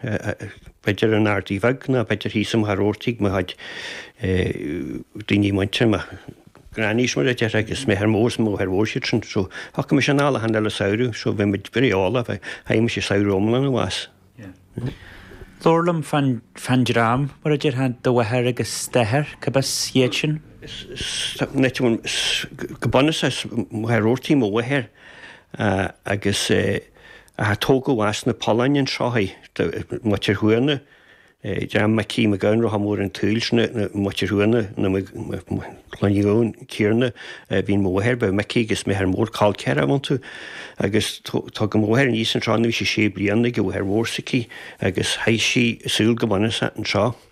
b'fhéidir an Ardaí Bheag nó b'fhéidir thíos i Machaire Rabhartaigh mo chuid daoine muinteartha, mo ghrannies mar a déarfá agus m'athair mór is máthair mhór is iad sin so thiocfaimis anall achan uile samhradh so bhí muid very all of it chaith mise samhradh iomlán abhus. Labhair liom fán fán dream mar a déarfá do mháthair agus d'athair cárb as iad sin? Nite go bunúsach as Machaire Rabhartaigh mo mháthair agus eh a tógadh as na Polláin, an tSraith, de Mhuintir Thuama, dream Mhicí Mhic Gabhann, Rotha Mór an tSaoil sin, Muintir Thuama, cineadh céanna, bhí mo mháthair, bhí Micí agus m'athair mór col ceathar iontu agus tugadh mo mháthair aníos an tSraith nuair a bhí sí sé bliana chuig an mháthair mhór s'aici agus chaith sí a saol go bunúsach ar an tSraith.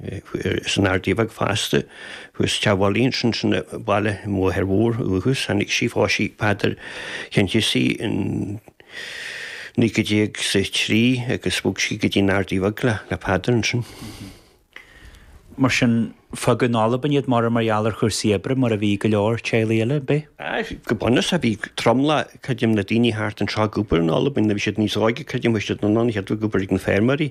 Is an Ardaí Bheag fosta, thuas te Bhalla Ínse sin a baileadh an mháthair mhór uathu is tháinig sí phós sí Peadar Chencizi in 1923 agus bhog sí go dtí an Ardaí Bheag le Peadar ansin. Mar sin, fágadh in Albain iad mura mar gheall ar chúrsaí oibre mar a bhí go leor teaghlaigh eile, an b'é? Aye, go bunúsach bhí tromlach, creidim, na daoine thart anseo ag obair in Albain, bhí siad níos óige, creidim, chuaigh siad anonn, chéad bhí ag obair ag na feirmeoirí.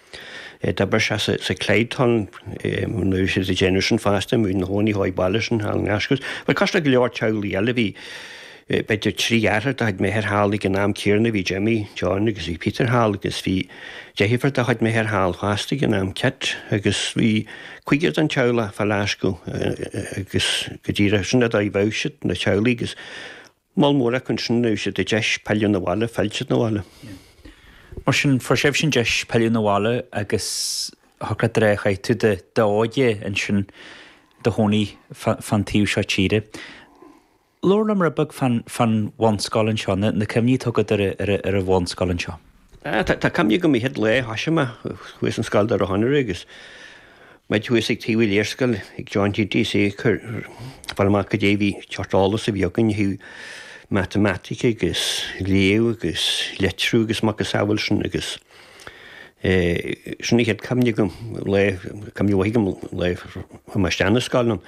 D'oibrigh sé sa Clyde Tunnel nuair a bhí siad ag déanamh sin fosta, muid inár gcónaí chois baile ansin thall i nGlaschú. Bhuel, cosúil le go leor teaghlaigh eile bhí, b'fhéidir, trí dheartháir de chuid m'athair thall ag an am céanna, bhí Jimmy, John agus bhí Peter thall agus bhí deirfiúr de chuid m'athair thall fosta ag an am, Kit, agus bhí cúigear den teaghlach fá Ghlaschú agus go díreach sin an dóigh a raibh siad, na teaghlaigh agus. Moll mór acu ansin fuair siad an deis pilleadh 'na bhaile, pillte 'na bhaile. Mar sin, fuair sibhse an deis pilleadh 'na bhaile agus shocraigh, eh, chaith tú cuid de d'óige ansin i do chónaí fán taobh seo tíre. Labhair liom rud beag fán bhunscoil anseo, na cuimhní atá agat ar an bhunscoil anseo. Tá cuimhne agam an chéad lá a thoisigh mé chuaigh ar an scoil Doire Chonaire agus muid thuas ag taobh an léarscáil ag John GT ag iarraidh fáil amach cad é a bhí seort eolas a bhí againn ó thaobh matamaitic agus léamh agus litriú agus macasamhail sin agus sin an chéad chuimhne agam, lá, cuimhne mhaith agam lá a chuaigh mé isteach 'na scoile ann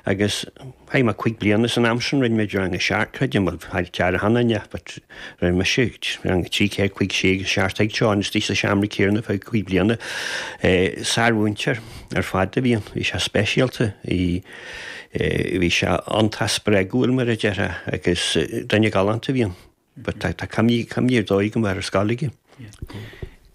agus Chaith mé cúig bliana san am sin, rinne mé rang a seacht creidim mar chóir achan nduine, rinne mé rang a trí ceathair cúig sé agus seacht ag John GT sa seomra céanna fá chúig bliana. Sármhúinteoir ar fad a bhí ann, bhí sé speisialta, bhí sé iontach spreagúil mar a déarfá agus duine galánta a bhí ann. But tá tá cuimhne cuimhne ar dóigh agam ar an scoil agus.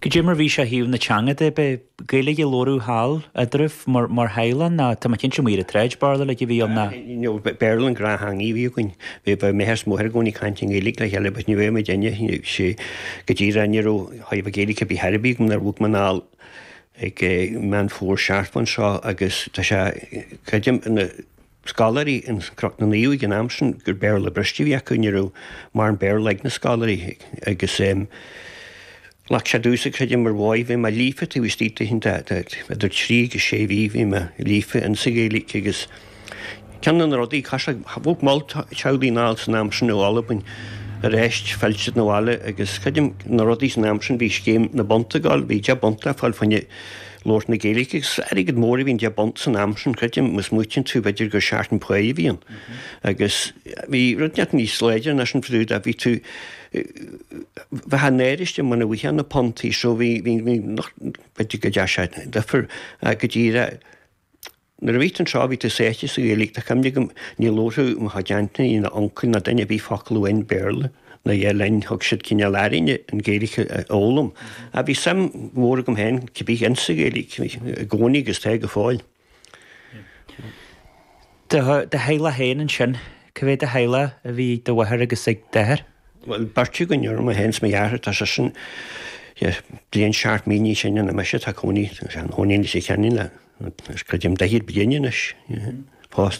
Cad é mar bhí sé ó thaobh na teanga de b'é Gaeilge a labhradh thall eadraibh mar mar theaghlach nó tá mé cinnte amuigh ar an tsráid Béarla uilig a bhí ann ná. No Béarla an gnáth-theanga a bhí againn. Bhí bhí m'athair is mo mháthair i gcónaí ag caint i nGaeilge le chéile but ní bhféadh muid aine sí go díreach ní raibh thaobh a Gaeilge bí thar a bhí nuair a bhog muid anall ag Meán Fómhair seartmhna anseo agus tá sé creidim ina scoláirí i gCnoc na Naomh ag an am sin gur Béarla briste a bhí acu, ní raibh mórán Béarla ag na scoláirí agus ghlac sé domhsa creidim mar mháigh, bhí mé líofa taobh istigh de oícheanta fhada, idir trí agus sé mhí, bhí mé líofa in sa Ghaeilge agus ceann de na rudaí, chaith sé, bhog moll teaghlaigh anall san am sin ó Albain arís phill siad na bhaile agus ceann de na rudaí san am sin bhí scéim na bpunt a fháil, bhí deich bpunt le fáil fá choinne. labhairt na Gaeilge agus is airgead mór a bhí i ndeich bpunt san am sin, creidim, má smaoitíonn tú b'fhéidir gur seachtain páighe a bhí ann agus bhí rud inteacht níos láidre ná sin fadú dá bhí tú bheith náirithe muna bhfuightheá na puntaí so bhí bhí bhí nocht b'fhéidir go dtearn sé duifear go díreach Nuair a bhí tú anseo bhí tú sáite sa Ghaeilge, tá cuimhne agam, ní labharfadh mo chuid aintíní ná uncail ná duine ar bith focal amháin Béarla ná a dhath linn, thug siad cineál orainne an Ghaeilge a fhoghlaim. Ach bhí suim mhór agam féin cibé insa Ghaeilge i gcónaí agus tá go fóill. Do theaghlach féin ansin, cá mhéad de theaghlach a bhí ag do mháthair agus ag d'athair? Bhuel, beirt againn orm, mé féin is mo dheartháir, tá seisean bliain is seacht mí níos sine ná mise, tá cónaí, tá sé ina chónaí i Leitir Ceanainn le, creidim, daichead bliain anois, pósta.